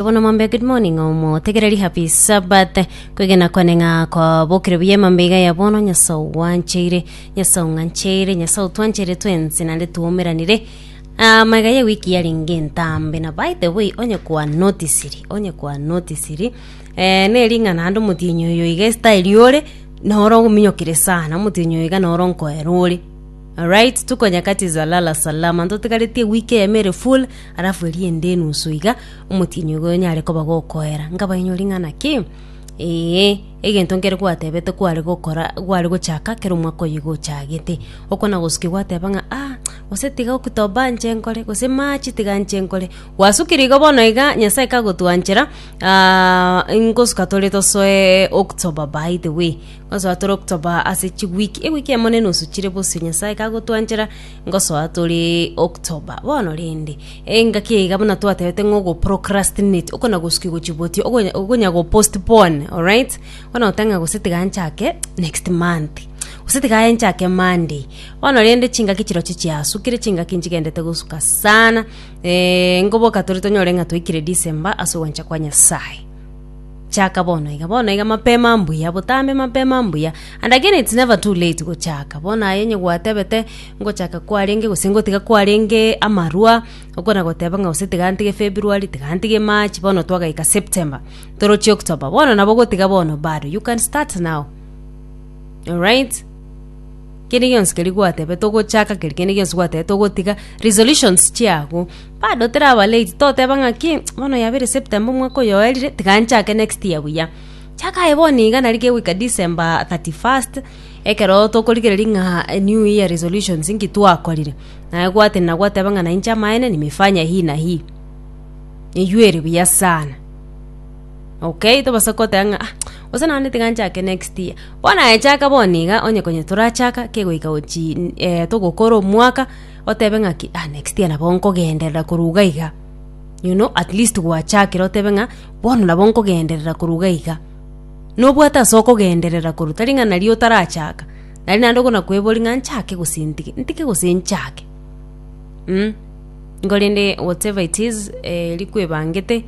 Bono mambe good morning omotegereri happy sabbath kwegena kwane ng'a kwabokire buya emambe iga ya bono nyasae ogwancheire nyasae ong'ancheire nyasae otwancheire twensi naende twaumeranire ama iga ye wiki yarenge entambe na by the way onye kwa notisiri onye kwa notisiri eh, nering'a naende omotienyi oyo iga esitayeri ore noro ogominyokire sana omotienyi oyo iga noro nkoera ore Alright, tuko nyakati za lala salama ntotigaretie wiki eyemo ere full alafu eria ende enusu iga Omotienyi oyo nyare koba gokoera, nkabainwe ring'ana ki? Ee, egento nkere gwatebete kware gokora gware gochaka kera omwaka oyoigo ochagete. Okwo na gosukia gwateba ng'a ah gose tiga oktoba nche nkore gose march tiga nche nkore. Gwasukire igo bono iga Nyasae kagotwanchera nkosuka tore tosoe October by the way. Nkosoa tore October ase chiweek, eweek emo na enusu chire bosio Nyasae kagotwanchera Ngosoa tore October bono rende. Engaki iga buna twatebete ng'o go procrastinate okona gosuki gochiboti okonya okonya go postpone alright bono otang'a gose tiga nchake next month gose tiga nchake Monday bono rende chingaki chirochio chiasukire chingaki nchigendete gosuka sana eeh ngoboka tore tonyore ng'a twaikire December ase ogwancha kwa Nyasaye. Chaka bono iga, bono iga mapema mbuya, botambe mapema mbuya. And again it's never too late gochaka. Bono aye onye gwatebete ngochaka kwarenge gose ngotiga kwarenge amarwa, okona goteba ng'a gose tiga ntige February, tiga ntige March, bono twagaika September, toroche October, bono nabo gotiga bono bado, you can start now. Alright? Kende gionsi keria gwatebete ogochaka, keri kende gionsi gwatebete ogotiga, resolutions chiago, Bado teraba late, toteba ng'aki, bono yabeire September omwaka oyo oerire, tiga nchake next year buya. Chaka aye bono iga nari kegoika December 31st, ekero tokorigereria ng'a new year resolutions nki twakorire, naye gwatenena gwateba ng'a na inche amaene nimefanya hii na hii. Eywo ere buya sana. Okay, tobasa goteba ng'a ah, gose naende tiga nchake next year. Bono aye chaka bono iga, onye konya torachaka, kegoika gochii togokora omwaka. Otebe ng'a ki, ah, next year nabo nkogenderera korwa iga iga. You know, at least gwachakire otebe ng'a bono nabo nkogenderera korwa iga iga. Nobwate ase okogenderera korwa tari ng'a nari otarachaka, nari naende okona kwebori ng'a nchake gose ntige, ntige gose nchake mm. Igo rende whatever it is eh rikwebangete.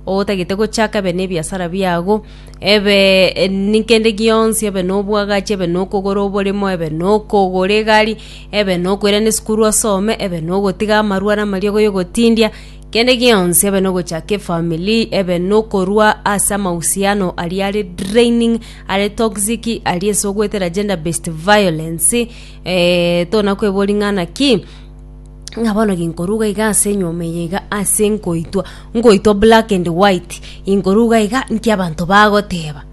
Otagete gochaka ebe nebiasara biago, ebe nikende gionsi, ebe nobwagachi, ebe nokogora oboremo, ebe nokogora egari, ebe nokoirana esukuru asome, ebe nogotiga amarwa na amariogo yogotindia, kende gionsi, ebe nogochaka efamiri, ebe nokorwa ase amahusiano aria are draining, are toxic, aria ase ogoetera gender based violence, tona kweboria ng'ana ki? ng'a bono ginkoruga iga ase enyomba eye iga ase nkoitwa nkoitwa black and white inkoruga iga nki abanto bagoteba.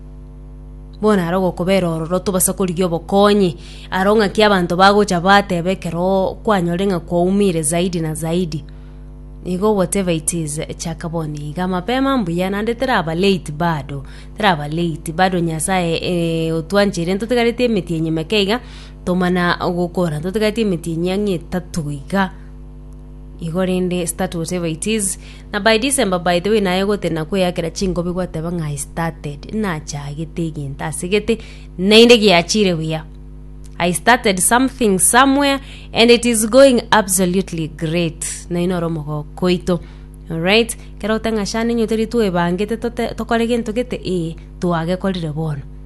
Bono aro ogokobera ororo tobasa korigia obokonyi, aro ng'aki abanto bagocha bateba ekeroo kwanyore ng'a kwaumire zaidi na zaidi. Igo whatever it is chaka bono iga mapema mbuya naende teraba late bado teraba late bado Nyasaye otwancheire ntotigaretie emetienyi meke iga. Tomana gokora totigati emetienyi ang'e etato iga igo rende start whatever it is na by December by the way naye gotena kweyakera chingobi gwateba ng'a I started nachagete egento asegete naende giachire buya I started something somewhere and it is going absolutely great naye noro omogoko oito alright kero oteng'a shana inye teri twebangete tote tokore gento gete ee twagekorire bono